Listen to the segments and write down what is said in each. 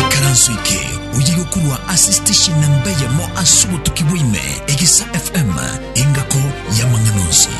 ikaranso eke oye gokorwa ase station namba eyemo ase obotuki bwaime egisa fm engako y'amang'ana onsi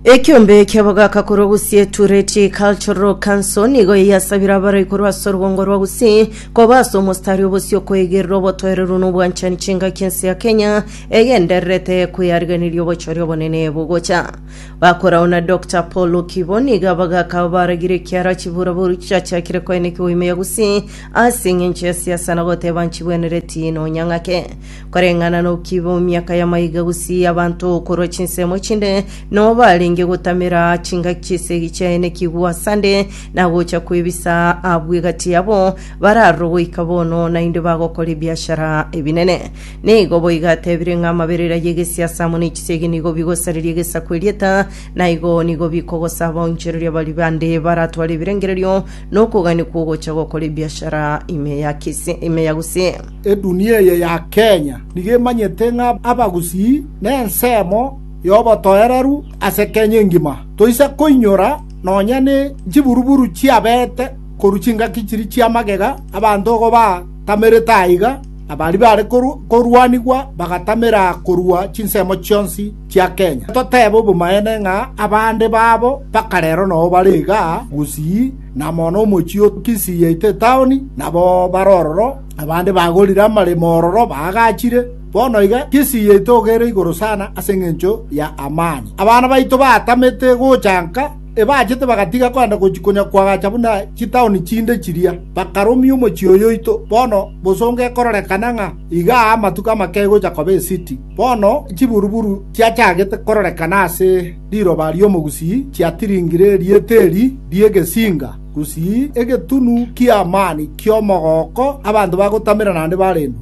ekiombe kiabogaka korwa gusii tureti cultural council nigo yasabire abarai korwa ase orugongo rwa gusii koba ase omostari obosio koegerera obotoereru na obwanchani chingaki ense ya kenya egendererete kweyarigereria obochori obonene bogocha. Bakorao na Doctor Paul Okibo niga bagaka abaragire ekiara chiburaboru chiachiakire koenekigwa ime ya Gusii ase eng'encho ya siasa na goteba nchigwenereti nonya ng'ake. Koreng'ana na Okibo, miaka ya maiga Gusii abanto korwa chinsemo chinde noo barenge gotamera chingaki chi'esegi chiaenekigwa asande na gocha kwebisa abwo egati yabo bararoro goika bono naende bagokora ebiashara ebinene. Nigo boigo atebire ng'a amaberera y'egesiasa amo ne chisegi nigo bigosareria egesaku erieta, na igo nigo bikogosa abaonchoreria baria bande baratware ebirengererio na okogania kw'ogocha gokora ebiashara ime ya kise, ime ya gose. Edunia eye ya Kenya nigo emanyete ng'a abagusii nensemo yobotoereru ase Kenya engima. Toisa koinyora nonya ne nchiburuburu chiabete korwa chingaki chiria chiamagega abanto igo batamerete aiga Abaaria baare korwanigwa bagatamera korua chinsemo chionsi chia Kenya. Toteebe obomaene ng'a abande babo mpaka rero nao bare iga Gusii, na mono omochie o Kisii yaito etaoni, nabo bare ororo, abande bagorire amaremo ororo baagachire. Bono iga Kisii yaito ogere igoro sana ase engencho y'amani. Abana baito batamete gocha nka. Ebachete bagatiga kogenda gochia konyakwagacha buna chitaoni chinde chiria, bakarumia omochie oyoito. Bono bosongo ekororekana ng'a iga aa amatuko amake egocha koba esiti. Bono chiburu‐buru chiachagete kororekana ase riroba ri'omogusii chiatiringire erieta eri ri'egesinga, gusii, egetunu ki'amani ki'omogooko, abanto bagotamera naende barendwe.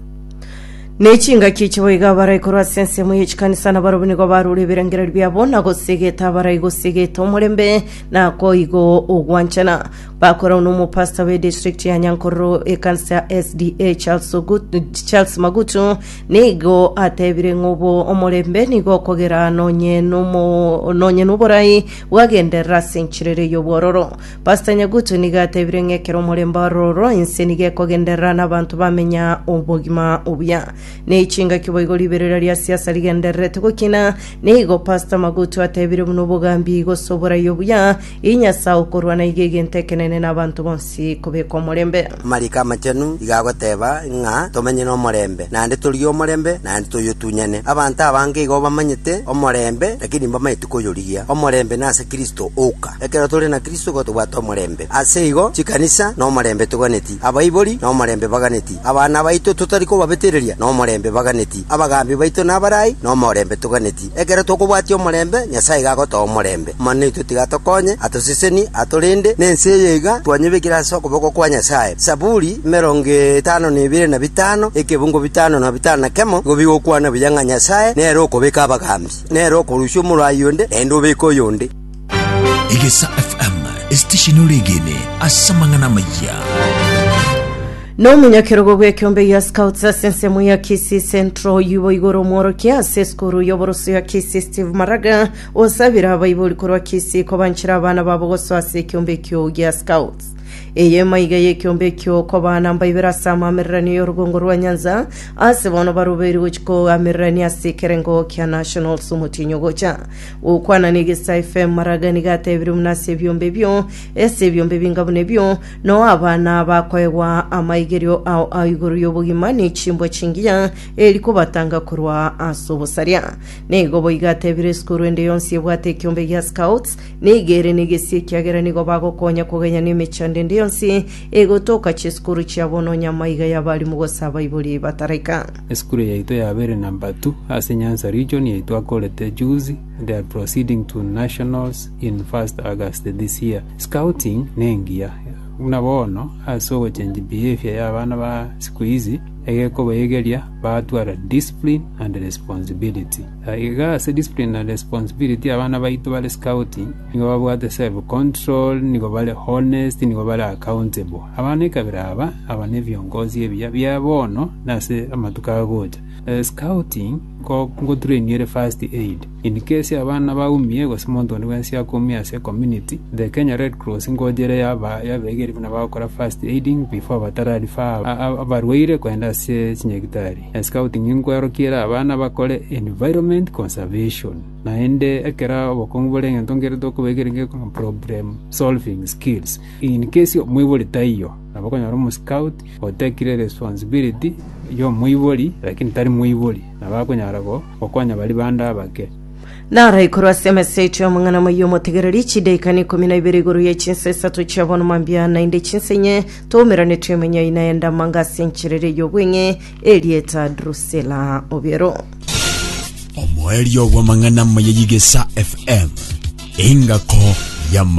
Ne chingaki echi boigo abarai korwa ase ensemo ye chikanisa nabarobwo nigo barure ebirengererio biabo na gosegeta abarai gosegeta omorembe na koigo ogwanchana bakorwa nomopasta be district ya Nyankororo ekanisa ya SDA Charles, Ogut- Charles Magutu nigo atebire ng'obo omorembe nigo okogera nonye nomo- nonye noborai bwagenderera ase enchirere y'obwororo Pastor Nyagutu nigo atebire ng'a ekero omorembe ororo inse nigo ekogenderera na abanto bamenya obogima obuya. Ne chingaki boigo riberera ria siasa rigendererete gokina, na igo Pastor Magutu atebire buna obogambi gose oborai obuya ii Nyasae okorwana iga egento ekenene na abanto bonsi kobeka omorembe. Amariko Amachenu iga agoteba ng'a tomenye nomorembe, naende torie omorembe, naende toyotunyane. Abanto abange igo bamanyete omorembe, lakini mbamanyete koyorigia omorembe nase Kristo oka. Ekero tore na Kristo igo tobwate omorembe. Ase igo chikanisa nomorembe toganeti, abaibori nomorembe baganeti, abana baito totari kobabetereria nomorembe baganeti, abagaambi baito nabarai nomorembe toganeti. Ekero tokobwatia omorembe, Nyasae iga agotoa omorembe. Amanene aito tiga atokonye, atoseseni, atorende, na ense eye iga twanyebekire ase okoboko kwa Nyasae. Zaburi emerongo etano na ebere na bitano, ekebungo bitano na bitano na kemo, igo bigokwana buya ng'a Nyasae nere okobeka abagaambi. Nere okorusia omorwayi onde, naende obeke oyonde. Egesa FM, esitesheni oregene ase amang'ana amayia. Nomonyakerogo bw'ekeombe gia Scouts ase ensemo ya Kisii Central oyio boigo ore omworokia ase esukuru y'oboroso ya Kisii Steve Maraga osabire abaibori korwa Kisii kobanchera abana babo gosoa ase ekeombe ekio gia Scouts. Eye emaiga y'ekiombe ekio okobaana mbaibere ase amaamererania y'orogongo rwa nyansa, ase bono barubeirwe gochia koamererania ase ekerengo kia Nationals omotienyi ogocha. Gokwana n'egesa FM Maraga nigo atebirie buna ase ebiombe ebio, ase ebiombe ebinga buna ebio, nao abana bakoegwa amaigerio ao ao igoro y'obogima ne chimbwa chingiya eri kobatanga korwa ase obosaria. Nigo boigo atebirie esukuru ende yonsi ebwate ekiombe gia Scouts, Nigo ere negesie ekiagera nigo bagokonya kogenya nemechando ende yonsi egotoka chisukuru chia bono onye amaiga y'abalimu gose abaibori bataraika. Esukuru yaito yabeire number two ase Nyanza region yaito akorete juzi they are proceeding to nationals in first August this year. Scouting nengiya buna bono ase ogochange behavior ya abana ba sikuizi egekobaegeria batware discipline and responsibility. Na iga ase discipline na responsibility abana baito bare scout nigo babwate self control, nigo bare honest, nigo bare accountable. Abana ekabira aba, aba nebiongozi ebiya bia bono na ase amatuko agocha. Scouting nko ngotraini ere first aid. In case abana baumie gose monto onde bwensi akoumia ase ecommunity, the Kenya Red Cross ngocha ere yaba yabegeria buna bagokora first aiding before batararifer abarwaire kogenda ase chinyagitari. Na scouting nkwerokiere abana bakore environment conservation, naende ekero obokong'u bore egento nkere tokobeekeria nge problem solving skills. In case omoibori taiyo, nabo okonyora omoscout otekire responsibility y'omoibori lakini tari moibori, nabo akonyara go- gokonya baria bande abake. Naraikorwa ase emeseti y'omong'ina moyio omotegereri, chidaikaini ikomi na ibere igoro ye chinsa isato chia bono mambia, naende chinsa inye Twaumerane twemenya ina enda manga ase enchera ere y'obweng'e erieta Drusela obiero. Omoerio bw'amang'ana amaya y'Igesa FM. Engako y'ama.